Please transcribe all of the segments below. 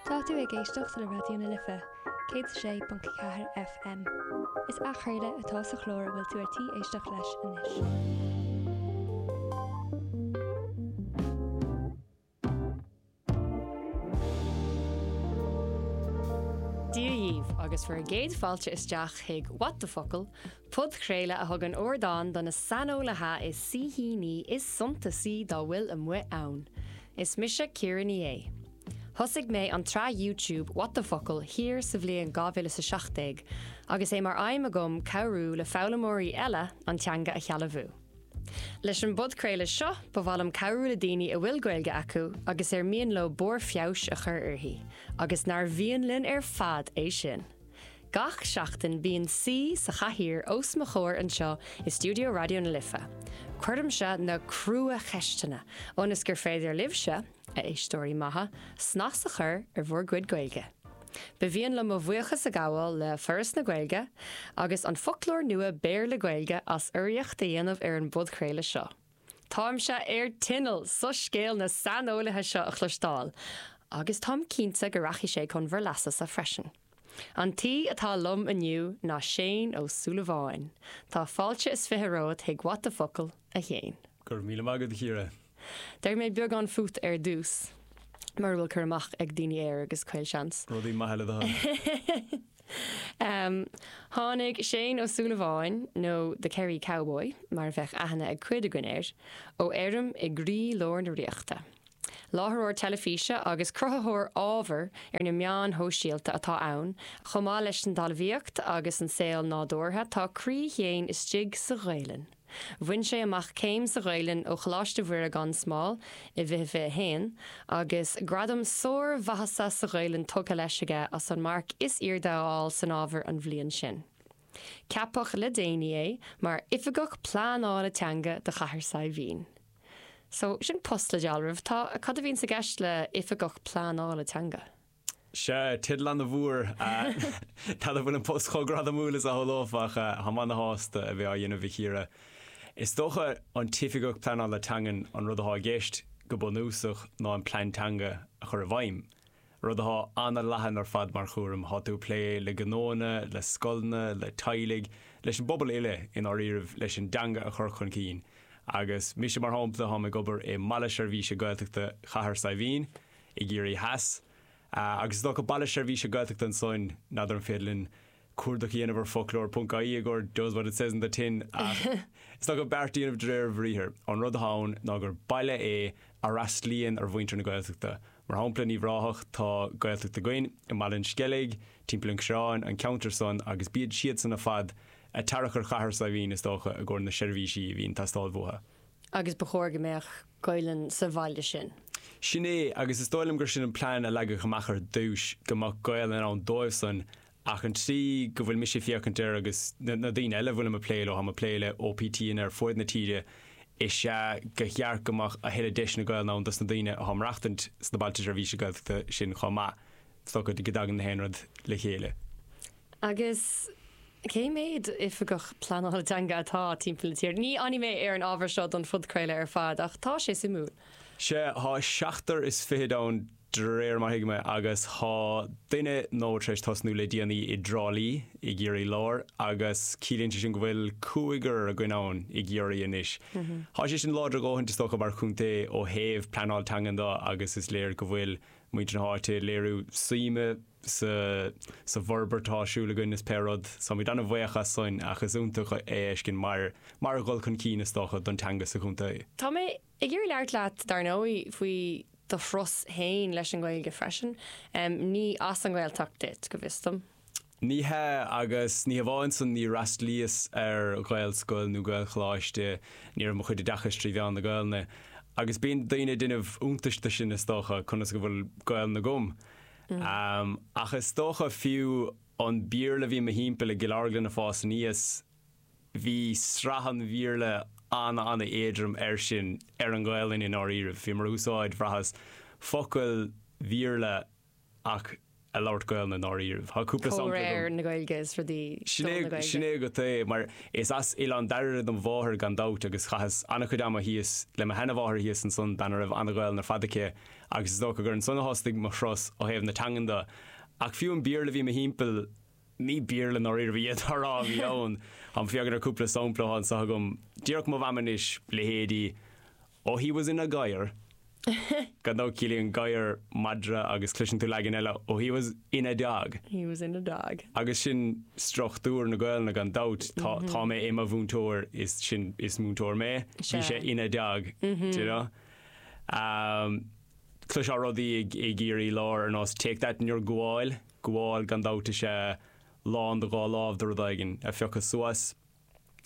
Tá tú ag éisteacht le Raidió na Life, 106.4 FM. Is athchraoladh atá sa chlár a bhfuil tú ar tí éisteacht leis anois. Dia dhaoibh agus bhur gcéad fáilte isteach chuig What the Focal! Podchraoladh a thugann ardán do na saineolaithe is saoithíní is suntasaí dá bhfuil amuigh ann. Is mise Ciara Ní É. Thosaigh mé an tsraith YouTube What the Focal! thiar sa bhliain 2017 agus é mar aidhm agam cabhrú le foghlaimeoirí eile an teanga a shealbhú. Leis an bpodchraoladh seo, ba mhaith liom cabhrú le daoine a bhfuil Gaeilge acu agus ar mian leo barr feabhais a chur uirthi, agus nár mhian linn ar fad é sin! Gach seachtain bíonn saoi sa chathaoir os mo chomhair anseo i stiúideo Raidió na Life. Cuirimse na cruacheisteanna ionas gur féidir libhse, a éisteoirí maithe, snas a chur ar bhur gcuid Gaeilge. Ba mhian liom mo bhuíochas a ghabháil le Foras na Gaeilge agus an foclóir nua Béarla-Gaeilge as urraíocht a dhéanamh ar an bpodchraoladh seo. Táimse ar tinneall soiscéal na saineolaithe seo a chloisteáil, agus táim cinnte go rachaidh sé chun bhur leasasa freisin. An t-aoi atá liom inniu ná Séaghan Ó Súilleabháin. Tá fáilte is fiche romhat chuig What the Focal, a Shéaghain. Go raibh míle maith agat, a Chiara. Déarfaidh mé beagán fút ar dtús, mura bhfuil cur amach ag daoine air, agus caolseans. Rudaí maithe le do thoil. Um tháinig Séaghan Ó Súilleabháin, nó The Kerry Cowboy mar a bheadh aithne ag cuid againn air, ó fheirm i gcroílár na ríochta. Láithreoir teilifíse agus cruthaitheoir ábhair ar na meáin shóisialta atá ann, chomh maith leis an talmhaíocht agus an saol nádúrtha, tá croí Shéaghain istigh sa Ghaelainn. Bhain sé amach céim sa Ghaelainn ó Choláiste Mhuire gan Smál i bhfiche fiche haon, agus gradam sármhaitheasa sa Ghaelainn tugtha leis aige as an marc is airde a fháil san ábhar an bhliain sin. Ceapadh le déanaí é mar Oifigeach Pleanála Teanga do Chathair Saidhbhín. So, sin post le dealramh. Tá, cad a bhíonns i gceist le Oifigeach Pleanála Teanga? Sea, teideal an-mhór. N'fheadar an bhfuil an post chomh gradamúil is a shamhlófá ach táim ana-shásta a bheith á dhéanamh, a Chiara. Is dócha, an tOifigeach Pleanála Teangan, an rud atá i gceist, go bunúsach, ná an Plean Teanga a chur i bhfeidhm. Rud atá ana-leathan ar fad mar chúram, tá tú ag plé le gnóanna, le scoileanna, le teaghlaigh, leis an bpobal uile, i ndáiríribh, leis an dteanga a chur chun cinn. Agus mise, mar shampla, táim ag obair i mBaile Seirbhíse Gaeltachta Chathair Saidhbhín, i gCiarraí Theas, agus is dócha Baile Seirbhíse Gaeltachta ansoin, n'fheadar an féidir linn cuardach a dhéanamh ar foclóir.ie i gcomhair does what it says in the tin ach is dócha beart a dhéanamh de réir a bhriathair. An rud atá ann ná gur baile é a fhreastlaíonn ar mhuintir na Gaeltachta. Mar shampla, Uíbh Ráthach, tá Gaeltacht againn, i mBaile an Sceilg, timpeall an Choireáin, an ceantar san, agus bíd siadsan ar fad ag tarrac ar Chathair Saidhbhín, is dócha, i gcomhair na seirbhísí a bhíonn ag teastáil bhuatha. agus ba chóir go mbeadh Gaelainn sa bhaile sin. Sin é, agus is dóigh liom gur sin an plean a leagadh amach ar dtúis, go mbeadh Gaelainn ann dóibhsan, ach an tslí go bhfuil mise ag féachaint air, agus na daoine eile a bhfuilim ag plé leo, táim ag plé le OPTanna ar fuaid na tíre, is ea gur cheart go mbeadh a thuilleadh deiseanna Gaelainn ann dos na daoine atá ag maireachtaint sna Bailte Seirbhíse Gaeltachta sin chomh maith. is dócha go dtagann na haon rud le chéile. Agus cé mhéad oifigeach pleanála teanga atá timpeall na tíre? Ní fhanfaidh mé ar an ábhar seo don phodchraoladh ar fad, ach tá sé suimiúil. Sea, tá seachtar is fichid ann de réir mar thuigim é, agus tá duine nua tar éis tosnú le déanaí i dTrá Lí i gCiarraí Láir, agus ciallaíonn sé sin go bhfuil cúigear againn ann i gCiarraí anois. Tá sé sin láidir a dhóthaint, is dócha, mar chontae ó thaobh pleanáil teangan do, agus is léir go bhfuil muintir na háite ag léiriú suime sa bhforbairt atá ar siúl againn is pé rud. Táimid an-bhuíoch as sin ach is iontach é a fheiscint mar dhul chun cinn, is dócha, don teanga sa chontae. Tá mé ag iarraidh labhairt leat, dar ndóigh, faoi do thuras féin leis an nGaeilge freisin. Ní as an nGaeltacht duit, go bhfios dom. Ní hea, agus ní hamháin san, níor fhreastlaíos ar Ghaelscoil nó Gaelcholáiste, ní raibh mo chuid oideachais trí mheán na Gaelainne, agus bíonn daoine ag déanamh iontais de sin, is dócha, conas go bhfuil Gaelainn agam. Ach is dócha, fiú an Béarla a bhí i mo thimpeall i gCill Orglan ag fás aníos, bhí sraith an Bhéarla an-an-éadrom air sin, ar an nGaelainn i ndáiríribh. Bhíomar ag úsáid, bhraitheas, focail Bhéarla ach ag labhairt Gaelainne i ndáiríribh. Tá cúpla sampla agam. Comhréir na Gaeilge is rudaí Sin é, sin é agat é, mar is as Oileán Dairbhre dom mháthair gan dabht agus chaitheas an-chuid ama thíos le mo sheana-mháthair thíos ansan bean a raibh an-Ghaelainn ar fad aici agus is dócha gur ansan a thosaigh mo thuras ó thaobh na teangan do. Ach fiú an Béarla a bhí i mo thimpeall, ní Béarla i ndáiríribh n'fheadar a bhí ann, táim ag féachaint ar cúpla sampla atá anseo agam, díreach mo mham anois, leithéidí, Oh he was in a gadhar. Gan dabht ciallaíonn gadhar madra agus cloiseann tú leagan eile oh he was in a dog. He was in a dog. Agus sin struchtúr na Gaelainne gan dabht, tá tá mé i mo mhúinteoir as in is múinteoir mé, bhí sé ina dog, do you know. Umm cloisfeá rudaí i gCiarraí Láir ar nós take that in your gabháil, gabháil gan dabht is ea lán do dhá lámh do rud éigin a phiocadh suas.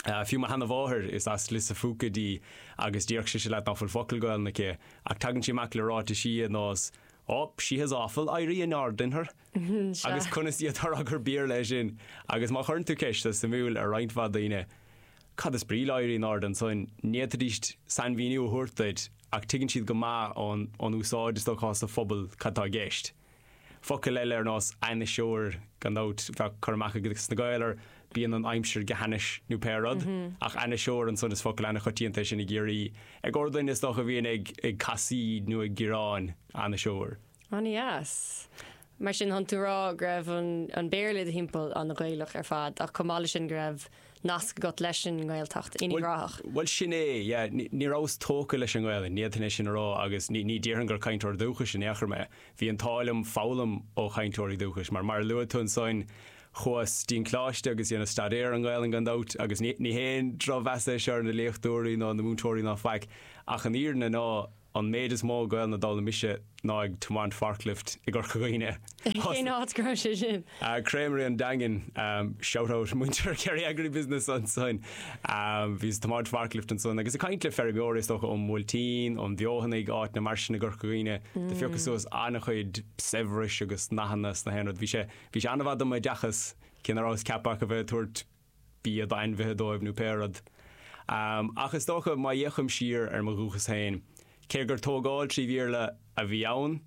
Fiú mo sheana mháthair, is as Lios a' Phúca dí agus déarfadh sise leat ná fuil focal Gaolainne aici, ach tagann sí amach le ráitisí ar nós Oh, she has awful éirí in airde in her! Agus conas atá ag rá gur Béarla é sin! Agus má chuireann tú ceist, is suimiúil, ar roinnt mhaith daoine, Cad is brí le éirí in airde ansoin? ní fhéadfaidíst sainmhíniú a thabhairt duit, ach tuigeann siad go maith ón úsáid, is dócha, sa phobal cad tá i gceist. Focail eile ar nós 'ainniseoir', gan dabht, bheadh cur amach ages na Gaeil ar 'bíonn an aimsir go hainnis' nó pé rud, ach 'ainniseoir' ansan is focal an-choitianta é sin i gCiarraí, ar dhuine, is dócha, a bhíonn ag casaoid nó ag gearán, 'ainniseoir'. Ana dheas. Mar sin, tánn tú ag rá go raibh an Béarla i do thimpeall ana Ghaelach ar fad ach chomh maith le sin go raibh nasc agat leis an nGaeltacht, in Uíbh Ráthach. Bhuel sin é, yeah. Ní, ní rabhas tógtha leis an nGaelainn, ní fhéadfainn é sin a rá agus ní, ní déarfainn gur cainteoir dúchais in aon chor mé. Bhí an t-ádh liom foghlaim ó chainteoirí dúchais mar, mar a luaigh tú ansoin, chuas dtí'n Coláiste agus dhéanas staidéar ar an nGaelainn gan dabht agus ní, ní haon drochmheas é seo ar na léachtóirí ná na múinteoirí ná faic ach an fhírinne ná, An méid is mó Gaelainne d'fhoghlaim mise ná ag tiomaint forklift i gCorca Dhuibhne. Cén áit go raibh sé sin? Créamaraí an Daingin, shout out muintir Kerry Agri Business ansin. Bhíos ag tiomáint forklift ansan agus ag caint le feirmeoirí is dócha ón mBuailtín, ón bhFeothanaigh, áiteanna mar sin i gCorca Dhuibhne. Do phiocas suas an-chuid saibhris agus nathanna sna haon rud. Bhí sé, bhí sé an-mhaith dom oideachas, cé ná rabhas ceaptha ach a bheith ag tabhairt bia d'ainmhithe dóibh nó pé rud. Ach is dócha, má fhéachaim siar ar mo dhúchas féin, cé gur tógáil trí Bhéarla a bhí ann,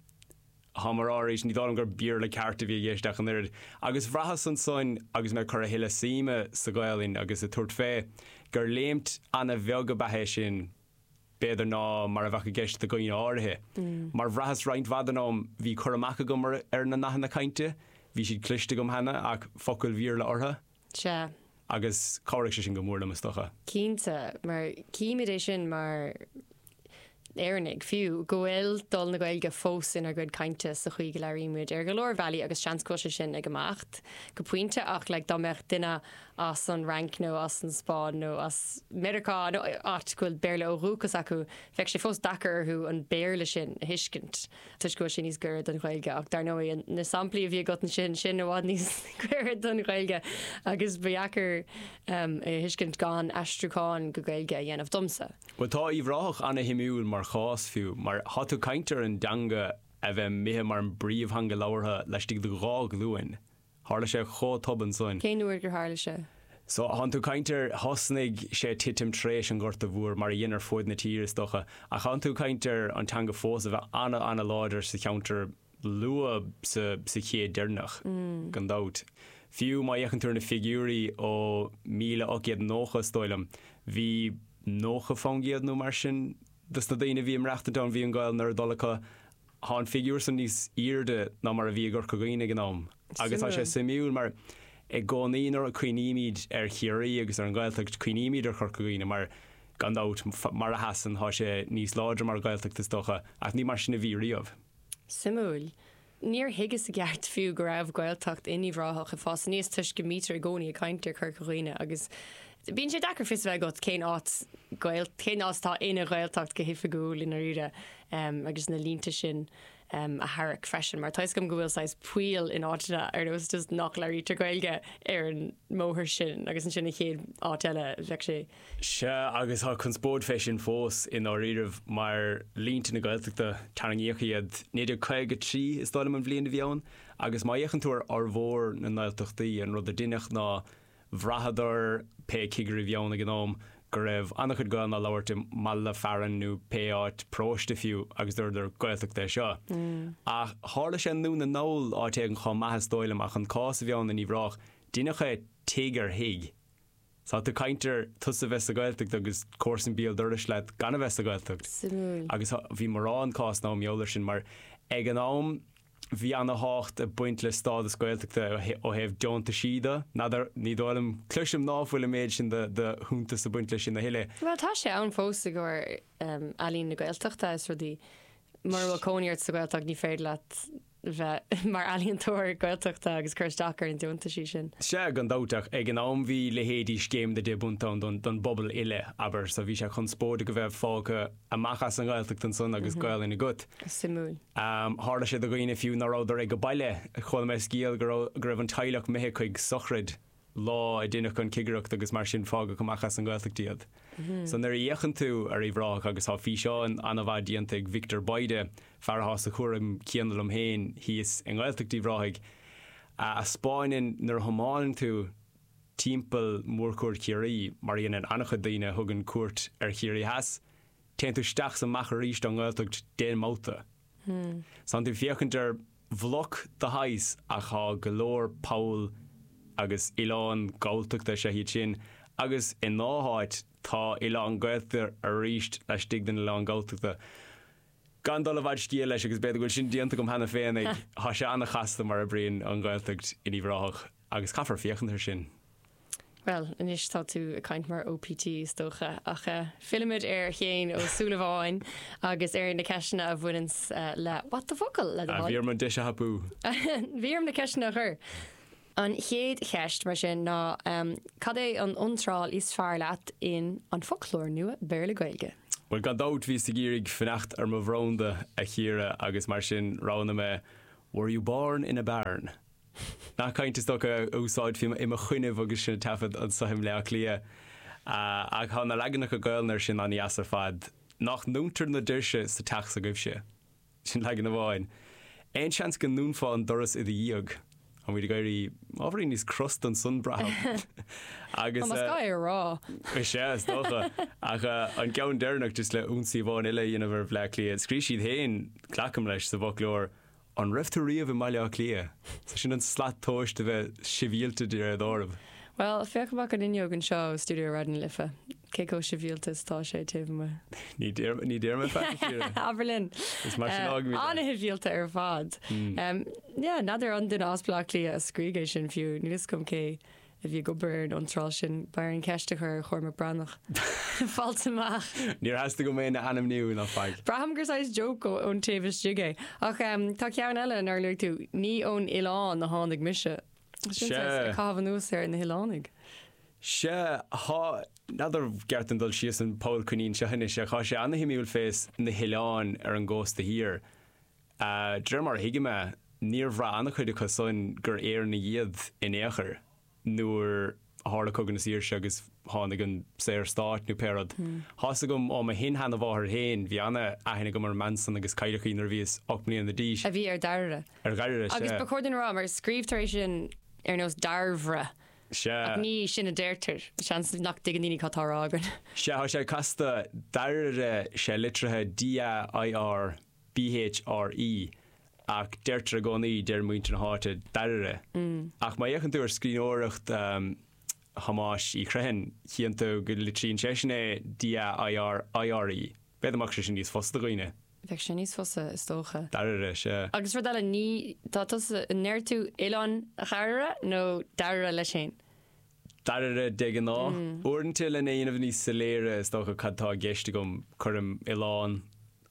táim á rá arís, ní dóigh liom gur Béarla ceart a bhí i gceist ach an oiread. Agus bhraitheas ansoin, agus mé ag cur a thuilleadh suime sa Ghaelainn agus ag tabhairt fé, gur léimt ana-bheag ab ea é sin, b'fhéidir, ná mar a bheadh i gceist do dhaoine áirithe. Mar bhraitheas roinnt mhaith den am, bhí cur amach agam ar na nathanna cainte, bhí siad cloiste agam cheana ach focail Bhéarla orthu. Sea. Agus chabhraigh sé sin go mór liom, is dócha. Cinnte, mar címid é sin mar Éireannaigh, fiú, go bhfuil dul na Gaeilge fós inár gcuid cainte sa chaoi go labhraímid ar go leor bealaí agus seans go bhfuil sé sin ag imeacht go pointe ach like dá mbeadh duine as an Fhrainc nó as an Spáinn nó as Meiriceá nó áit go bhfuil Béarla ó dhúchas acu, bheadh sé fós deacair orthu an Béarla sin a thuiscint toisc go bhfuil sé níos gaire don Ghaeilge. Ach dar ndóigh, na samplaí a bhí agat ansin, sin i bhfad níos gaire don Ghaeilge agus ba dheacair é a thuiscint gan aistriúchán go Gaeilge a dhéanamh, domsa. Bhuel, tá Uíbh Ráthach ana-shuimiúil mar chás fiú, mar tá tú ag caint ar an dteanga a bheith imithe mar an bpríomhtheanga labhartha laistigh de dhá ghlúin, Tharla sé chomh tobann soin. Cén uair gur tharla sé? So, thánn tú caint ar thosnaigh sé ag titim tréis an Ghorta Mhór, mar a dhein ar fuaid na tíre, is dócha, ach thánn tú caint ar an teanga fós a bheith ana ana láidir sa cheantar luath sa sa chéad deireanach, gan dabht. Fiú má fhéacann tú ar na figiúirí ó míle ocht gcéad nócha, is dóigh liom, bhí nócha fán gcéad nó mar sin dos na daoine a bhí ag maireachtaint ann, bhí an Ghaelainn ar a dtoil acu, Tá an figiúr san níos airde ná mar a bhí i gCorca Dhuibhne ag an am agus tá sé suimiúil mar i gcónaí nuair a chuimhnímid ar Chiarraí agus ar an nGaeltacht cuimhnímid ar Chorca Dhuibhne mar gan dabht mar a sheasann tá sé níos láidre mar Ghaeltacht is dócha ach ní mar sin a bhí riamh. Suimiúil. Níor thuigeas i gceart fiú go raibh Gaeltacht in Uíbh Ráthach ag fás aníos toisc go mbítear i gcónaí ag caint ar Chorca Dhuibhne agus Bíonn sé deacair fios a bheith agat cén áit atá ina Ghaeltacht go hoifigiúil i ndáiríre agus na línte sin a tharrac freisin, mar tá 'fhios agam go bhfuil saghas poill in áiteanna, ar nós just nach labhraítear Gaeilge ar an mbóthar sin agus ansin an chéad áit eile, bheadh sé. Sea, agus tá conspóid fé sin fós i ndáiríribh, mar línte na Gaeltachta, tarraingíodh iad 1953 is dóigh liom an bhliain a bhí ann, agus má fhéachann tú ar fhormhór na nGaeltachtaí, an rud a deineadh ná, Bhraitheadar, pé cigirí bhí ann ag an am, go raibh an-chuid Gaolainne á labhairt i mbaile fearainn nó pé áit paróiste fiú agus dúradar, Gaeltacht é seo. Ach tharla sé i nDún na nGall, áit éigin chomh maith is dóigh liom, ach an cás a bhí ann in Uíbh Ráthach, deineadh é tigh ar thigh. Tá tú caint ar tusa bheith sa Ghaeltacht agus comharsan béal dorais leat gan a bheith sa Ghaeltacht. Suimiúil. Agus bhí mórán cásanna dem eolas-sa mar ag an am, Bhí ana thábhacht ag baint le stádas Gaeltachta ó thaobh deontaisí do. N'fheadar, ní dóigh liom, cloisim ná fuil an méid sin de shuntas ag baint le sin a thuilleadh. Bhuel, tá sé ann fós i gcomhair Ealaín na Gaeltachta is rudaí. Mura bhfuil cónaí ort sa Ghaeltacht ní féidir leat bheith mar ealaíontóir Gaeltachta agus cur isteach ar na deontaisí sin. Sea, gan dabht, ach ag an am bhí leithéidí Scéim na Deich bPunt ann don bpobal uile, abair, so bhí sé conspóideach a bheith fágtha, amach as an nGaeltacht ansan agus Gaelainn agat. Suimiúil. Tharla sé do dhaoine fiú ná rabhadar ag baile. Chuala mé scéal go raibh go raibh an teaghlach imithe chuig sochraid lá a deineadh an cigireacht agus mar sin fágadh amach as an nGaeltacht iad. So nuair a fhéachann tú ar Uíbh Ráthach agus tá físeán an-mhaith déanta ag Victor Bayda, fear atá sa chúram céanna liom féin thíos i nGaeltacht Uíbh Ráthaigh, a 'speáineann nuair a thiomáineann tú timpeall Mhórchuaird Chiarraí, mar a dhéanann an-chuid daoine a thugann cuairt ar Chiarraí Theas, téann tú isteach is amach arís ón nGaeltacht d'aon bhabhta. Tánn tú ag féachaint ar bhloc de shaghas ach tá go leor poll agus oileán Galltachta, is ea iad sin, agus i ndá háit tá oileán Gaeltachta arís laistigh den oileán Galltachta. Gan dul i bhfad scéil leis, agus b'fhéidir go bhfuil sin déanta agam cheana féin, thá sé an-chasta mar a oibríonn an Ghaeltacht in Uíbh Ráthach. Agus caithfear féachaint air sin. Bhuel, anois tá tú ag caint mar OPT, is dócha, ach fillimid ar Shéaghan Ó Súilleabháin agus ar na ceisteanna a bhaineanns le What the Focal, le do thoil. Bhí orm an deis a thapú. Bhí orm na ceisteanna a chur. An chéad cheist, mar sin, ná cad é an iontráil is fearr leat in An Foclóir Nua Béarla-Gaeilge? Bhuel, gan dabht, bhíos ag iarraidh fanacht ar mo bhranda, a Chiara, agus mar sin roghnaigh mé Were you born in a barn? Nath cainte is dócha a úsáidfí i mo choinnibh agus sinn ag taifead anso i mBleá Cliath. Ach thá na leaganacha Gaolainne air sin an-dheas ar fad. Nách ndúntar na doirse sa teach s'agaibhse? Sin leagan amháin. Aon seans go ndúnfá an doras i do dhiaidh? Táimid ag éirí ábhairín níos crosta ansan, braithim. Agus. Más gá é a rá. Is ea, is dócha. Ach an ceann deireanach, just le ionsaí amháin eile a dhéanamh ar Bhleá Cliath, scríobh siad féin, glacaim leis, sa bhfoclóir, An raibh tú riamh i mBaile Átha Cliath? Sea, sin an slat tomhais de bheith sibhialta de réir dealraimh. Bhuel, féach amach an fhuinneog anseo ó stiúideo Raidió na Life, cé chomh sibhialta is atá sé taobh amuigh. Ní déarfad, ní déarfad faic na fríde. Abair linn. Is mar sin a fhágfaimid é. Ana shibhialta ar fad. Yeah, n'fheadar an duine as Baile Átha Cliath a scrígh é sin fiú, níl 'fhios agam cé a bhí ag obair ar an iontráil sin, b'fhearr an cheist a chur ar Chormac Breathnach. Fáilt amach! Níor theastaigh uaim é a ainmniú ná faic. Braithim gur saghas joke ón taobh istigh é. Ach tá ceann eile nár luaigh tú, Ní ón oileán a tháinig mise. Sin saghas ag caitheamh anuas ar na hoileánaigh. Sea, thá, n'fheadar, gceart dom dul síos an poll coinín seo anois, ach thá sé ana-shuimiúil fés na hoileáin ar an gcósta thiar. A, d'réir mar a thuigim é, níor bhraith an-chuid acu san gur Éireannaigh iad in aon chor nuair a tharla Cogadh na Saoirse agus tháinig an Saorstát nó pé rud. Thá's agam ó mo shin-sheanamháthair féin, bhí an-aithne agam ar an mbean san agus cailleadh í nuair a bhíos ocht mbliana d'aois. a bhí ar Dhairbhre. Ar Dhairbhre, Agus sea. ba chóir duinn a rá, mar scríobhtar é sin ar nós Dairbhre, Sea. ach ní sin a deirtear. Seans nach dtuigeann daoine cad tá á rá againn. Sea, thá sé casta, Dairire, sé litrithe D-a-i-r-e. B H R E ach deirtear i gcónaí, deir muintir na háite, dairire. Ach má fhéachann tú ar scríbhneoireacht Thomáis Uí Chriomhthain, chíonn tú go litríonn seisean é D A I R I R E. B'fhéidir go mbeadh sé sin níos fusa do dhaoine. Bheadh sé níos fusa, is dócha. Dairire, sea. Agus rud eile, ní, tá tusa, an ndeir tú oileán dhairire nó dairire leis féin? dairire de ghnáth. Uaireanta lena dhéanamh níos soiléire is dócha cad tá i gceist agam, cuirim oileán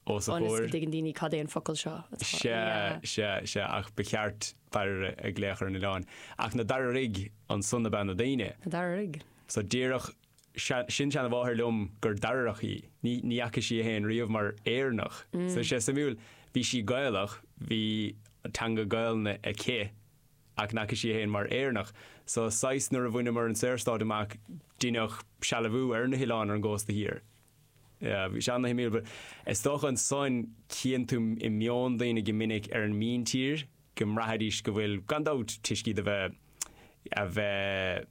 os a chomhair. ionas go dtuigeann daoine cad é an focal seo atá. Sea, sea, sea, ach ba cheart dairire a ghlaoch ar an oileán. Ach na dairirigh, ansan ab ea na daoine? Na dairirigh. So déarfadh sin-seanamháthair liom gur Dairireach í. Ní fhaca sí é féin riamh mar Éireannach. So sé suimiúil, bhí sí Gaelach, bhí teanga Gaelainne aici, Ach n'fhaca sí é féin mar Éireannach. So, saghas, nuair a bhaineamar an Saorstát amach, deineadh sealbhú ar na hoileáin ar an gcósta thiar. Yeah, bhí sé an-shuimiúil, but is dócha ansan chíonn tú i meon daoine go minic ar an míntír go mbraithfidís go bhfuil, gan dabht, toisc iad a bheith, a bheith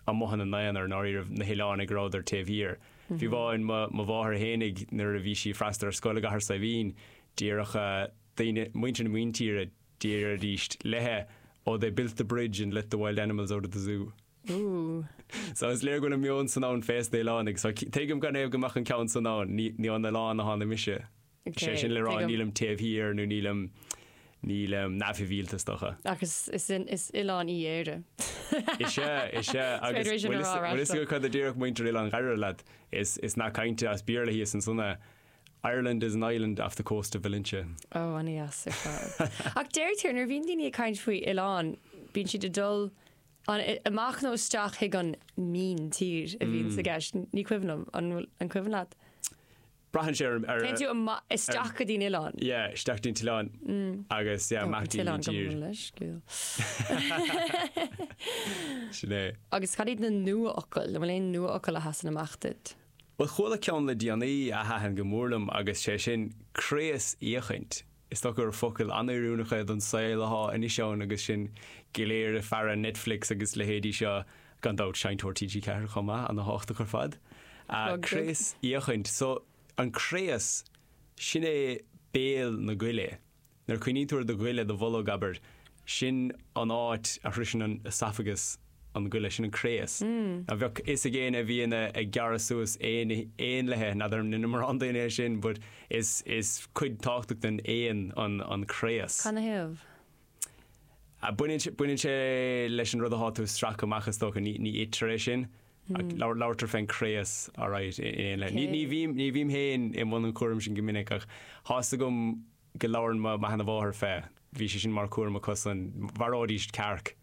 amuigh ina n-aonar, i ndáiríribh, na hoileánaigh, go rabhadar taobh thiar. Fiú amháin, mo, mo mháthair fhéinig, nuair a bhí sí ag freastal ar scoil i gCathair Saidhbhín, déarfadh daoine, muintir na míntíre, Déarfaidís léithe, Oh, they built the bridge and let the wild animals out of the zoo. Ooh. So is léir go bhfuil an meon san ann fés na hoileánaigh. So tuigim canathaobh go mbeadh an ceann san ann. Ní, ní ón oileán a tháinig mise. Ok, Sé sin le rá, tuigim. nílim taobh thiar nó nílim, nílim neamhshibhialta is dócha. Ach is, is, is oileán í Éire. Is ea, is ea. Is Agus féidir é sin bhfuil a fhios, rá ar bhfuil a fhios ais agat seo. cad a déarfadh muintir Oileán Dhairire leat? Is, is nath cainte as Béarla thíos ansan é. Ireland is an island off the coast of Valentia. Ó, ana-dheas ar fad. Ach deirtear nuair a bhíonn daoine ag caint faoi oileán, bíonn siad ag dul amach nó isteach chuig an míntír a bhíonn sa gceist. Ní cuimhin liom, an bhfuil an cuimhin leat? Braitheann sé ar... Téann tú isteach go dtí an oileán? Yeah, isteach dtí an t-oileán agus yeah, amach dtí an tír. Sin é. Agus cad iad na nua-fhocail? An bhfuil aon nua-fhocail a sheasann amach duit? Bhuel, chuala ceann le déanaí a thaitin go mór liom agus sé sin 'craosfhéachaint' Is dócha gur focail an-oiriúnach é don saol athá anois ann agus sinn go léir ag faire Netflix agus leithéidí seo, gan dabht Seinnteoir TG4 chomh maith, ana-thábhachtach ar fad. Plug duit. Craosfhéachaint. So, an craos, sin é béal na goile. Nuair a chuimhníonn tú ar do ghoile, do bholg, abair, sin an áit a shroiseann an oesafagas an goile, sin an craos. Now, bheadh a fhios ag éinne a bhíonn ag gearradh suas éanlaithe, n'fheadar an ndeineann mórán daoine é sin, but is cuid tábhachtach den éan an craos. Canathaobh? Baineann sé leis an rud atá tú ag stracadh amach is dócha, ní itear é sin. Ach labhartar fén gcraos alright in aon leith. Ní bhím, ní bhím féin i mbun an chúraim sin go minic ach thá's agam go labhrann mo, mo sheana mháthair fé, bhí sé sin mar chúram acusan, mharóidíst cearc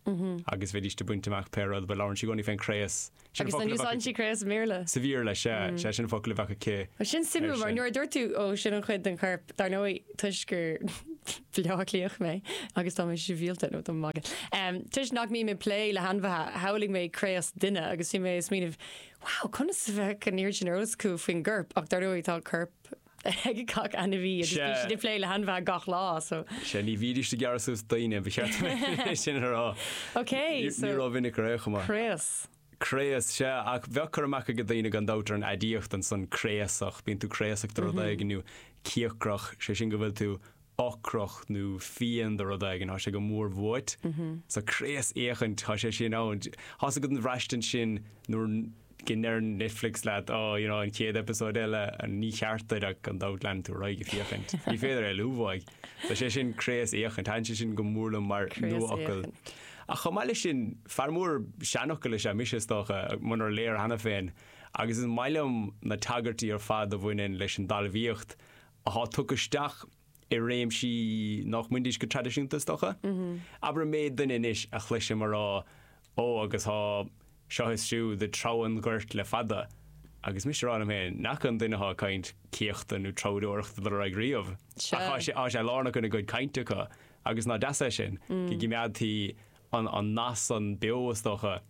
agus bheidíst ag baint amach pé rud, but labhrann sí i gcónaí fén gcraos. Sin an focal a bheadh aici. Agus an úsáideann sí craos sa mBéarla? Sa Bhéarla, sea, sea sin an focal a bheadh aici. Sin suimiúil mar nuair a dúirt tú ó sin an chuid den chorp, dar ndóigh toisc gur Bleá Cliathach mé agus tá mé sibhialta, nó tá mé ag magadh. Toisc nach mbím ag plé le hainmhithe, shamhlaigh mé craos duine agus bhí mé ag smaoineamh, wow, conas a bheadh an oiread sin eolas acu faoin gcorp? Ach dar ndóigh tá corp ag gach ainmhí agus bíonn siad ag plé le hainmhithe gach lá, so. Sea, ní bhídís ag gearradh suas daoine, ba cheart é sin a rá. Ok, so. Ní raibh mhinic ar é chomh maith. Craos. craos, sea, ach bheadh cur amach ag daoine gan dabht ar an aidiacht ansan, craosach, bíonn tú craosach de rud éigin, nó cíocrach, sé sin go bhfuil tú ocrach nó fiain de rud éigin, tá sé go mór uait. So craosfhéachaint, tá sé sin ann. Thá's agat an bhraistint sin nuair go ndeir Netflix leat, oh, you know, an chéad eipeasóid eile, níor cheart duit ach gan dabht leanann tú ar aghaidh ag féachaint. Ní féidir éalú uaidh. So sé sin craosfhéachaint, thaitin sé sin go mór liom mar nuafhocal. Craosfhéachaint. Ach chomh maith leis sin, fear mór seanfhocal is ea mise, is dócha, munar léir cheana féin, agus is maith liom na tagairtí ar fad a bhaineann leis an dtalmhaíocht atá tugtha isteach i réimsí nach mbainidís go traidisiúnta, is dócha. Abair an méid duine anois a chloisim a rá, Ó, agus tá seo is siúd ag treabhadh an ghoirt le fada, agus mise ag rá liom féin, n'fheadar an duine atá ag caint céachta nó treabhdóireachta a raibh riamh, ach tá sé lárnach ina gcuid cainte acu. Agus ná deas é sin? Go gcimeádtaí an nath san beo, is dócha,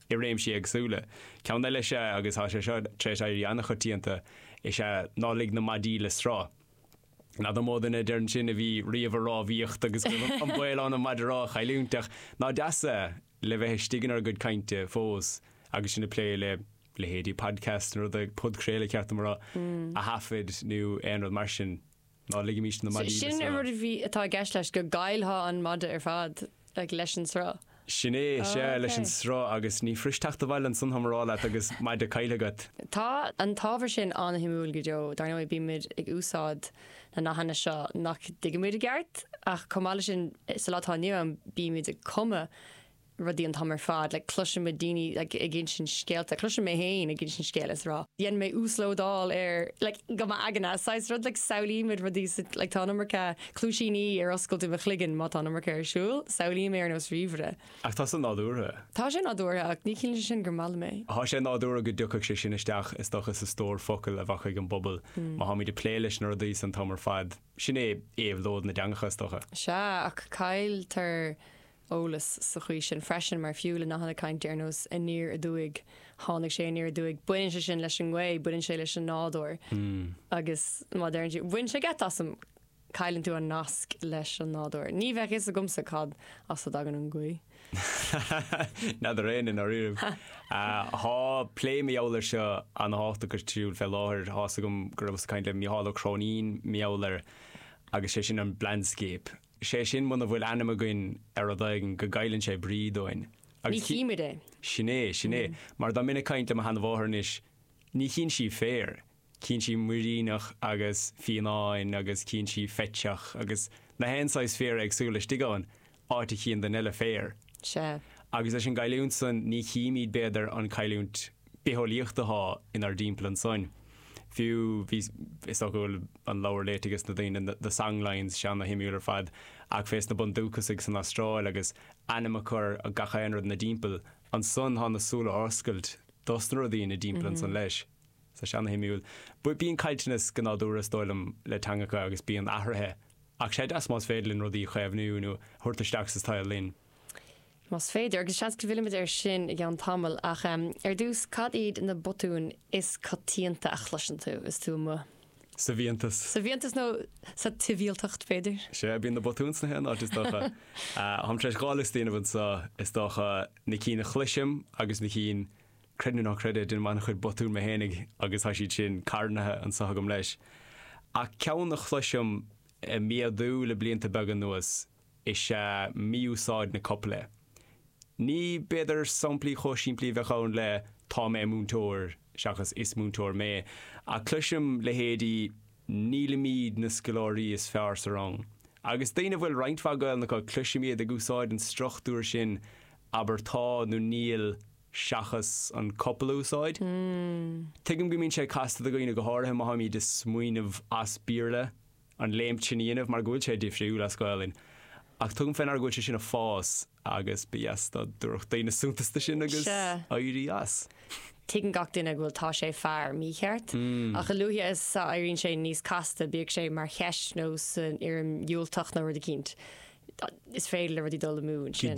i réimsí éagsúla. Ceann eile is ea, agus tá sé seo tar éis éirí an-choitianta, is ea 'ná lig na maidí le sruth'. N'fheadar an mó duine a deir ansin 'a bhí riamh ag rámhaíocht' agus go bhfuil an baol ann an maide rámha a chailliúint, ach ná deas é, le bheith istigh inár gcuid cainte fós agus sinn ag plé le leithéidí podcasts nó rudaí, podchraoladh ba cheart dom a rá, a thaifead nó aon rud mar sin. Ná ligimis na maidí le sruth. Sin an rud a bhí, atá i gceist leis, go gcaillfeá an maide ar fad, like, leis an sruth. Sin é, sea, leis an sruth, agus ní fuirist teacht abhaile ansan dá mb'ea, ar ais leat agus maide caillte agat. Tá an t-ábhar sin an-shuimiúil go deo, dar ndóigh, bímid ag úsáid na nathanna seo nach dtuigimid i gceart, ach chomh maith leis sin, sa lá atá inniu ann, bímid ag cumadh, rudaí an t-am ar fad, like cloisim daoine like ag insint scéalta, cloisim mé féin ag insint scéil is a rá dhein mé uaslódáil ar like go m'aigne, saghas rud like samhlaímid rudaí sa like tá an iomarca cluaisíní ar oscailt i mo chloigeann má tá an iomarca ar siúl, samhlaím é ar nós ríomhaire. Ach tá sé nádúrtha. Tá sé nádúrtha ach ní chiallaíonn sé sin gur maith liom é. Tá sé nádúrtha go dtiocfadh sé sin isteach is dócha sa stór focal a bheadh ag an bpobal má táimid ag plé leis na rudaí san an t-am ar fad, sin é éabhlóid na dteangacha is dócha. Sea, ach cailltear eolas sa chaoi sin freisin, mar fiú le nathanna cainte ar nós 'aniar aduaidh', 'tháinig sé aniar aduaidh', baineann sé sin leis an ngaoth, baineann sé leis an nádúr agus má deireann tú 'bhain sé geit asam', cailleann tú an nasc leis an nádúr. Ní bheadh fhios agamsa cad as a dtagann an ghaoth. N'fheadar éinne i ndáiríribh. Tá plé mar gheall air seo ana-thábhachtach agus tráthúil fé láthair. Tá fhios agam go rabhas ag caint le Mícheál Ó Cróinín mar gheall air agus sé sin an 'blandscape'. Is é sin muna bhfuil ainm againn ar rud éigin go gcailleann sé brí dúinn. Ní chímid é. Sin é, sin é. Mar dá mbeinn ag caint le mo sheana-mháthair anois, ní chíonn sí féar, cíonn sí muiríneach agus fionnán agus cíonn sí feiteach agus na haon saghas féar éagsúil istigh ann, áit a chíonn duine eile féar. Sea. Agus leis an gcailliúint san, ní chímíd, b'fhéidir, an cailliúint bitheolaíocht athá inár dtimpeall ansoin. Fiú, bhí, is dócha go bhfuil an leabhar léite aige sna daoine, The Songlines, sé ana-shuimiúil ar fad, ach fé sna bundúchasaigh san Astráil agus ainm a chur ar gach aon rud ina dtimpeall ansoin thá na súile oscailte dos na rudaí ina dtimpeall ansoin leis. So sé ana-shuimiúil. But bíonn caillteanas go nádúrtha is dóigh liom le teangacha agus bíonn athruithe ach sé deas más féidir linn rudaí a chaomhnú nó a thabhairt isteach sa tsaol linn. más féidir, agus seans go bhfillimid air sin i gceann tamaill, ach ar dtús, cad iad na botúin is coitianta a chloiseann tú is tú amuigh? Sa bhfiántas. Sa bhfiántas nó sa tsibhialtacht, b'fhéidir? Sea, bíonn na botúin sna haon áit, is dócha. Táim tar éis dhá liosta a dhéanamh anseo, is dócha, na cinn a chloisim agus na cinn, creid nó ná creid é, déanaim an-chuid botún mé fhéinig agus tá siad sin carnaithe anseo agam leis. Ach ceann a chloisim ag méadú le blianta beaga anuas is ea mí-úsáid na copaile. Ní, b'fhéidir, samplaí chomh simplí a bheadh ann le 'tá mé múinteoir' seachas 'is múinteoir mé', ach cloisim leithéidí 'nílimid na scoláirí is fearr sa rang'. Agus daoine a bhfuil roinnt mhaith Gaelainne acu, cloisim iad ag úsáid an struchtúir sin 'abair tá nó níl' seachas an copail a úsáid. Tuigim go mbíonn sé casta do dhaoine, go háirithe má táimid ag smaoineamh as Béarla. an léimt sin a dhéanamh mar go bhfuil sé difriúil as Gaolainn ach tugaim fé ndeara go bhfuil sé sin ag fás agus ba dheas dá dtabharfadh daoine suntas dó sin agus éirí as. Tuigeann gach duine go bhfuil tá sé fear mícheart ach a luaithe is a éiríonn sé níos casta, bíodh sé mar cheist nó san fhoirm dhiúltach nó rud eicínt, is féidir le rudaí dul amú ansin.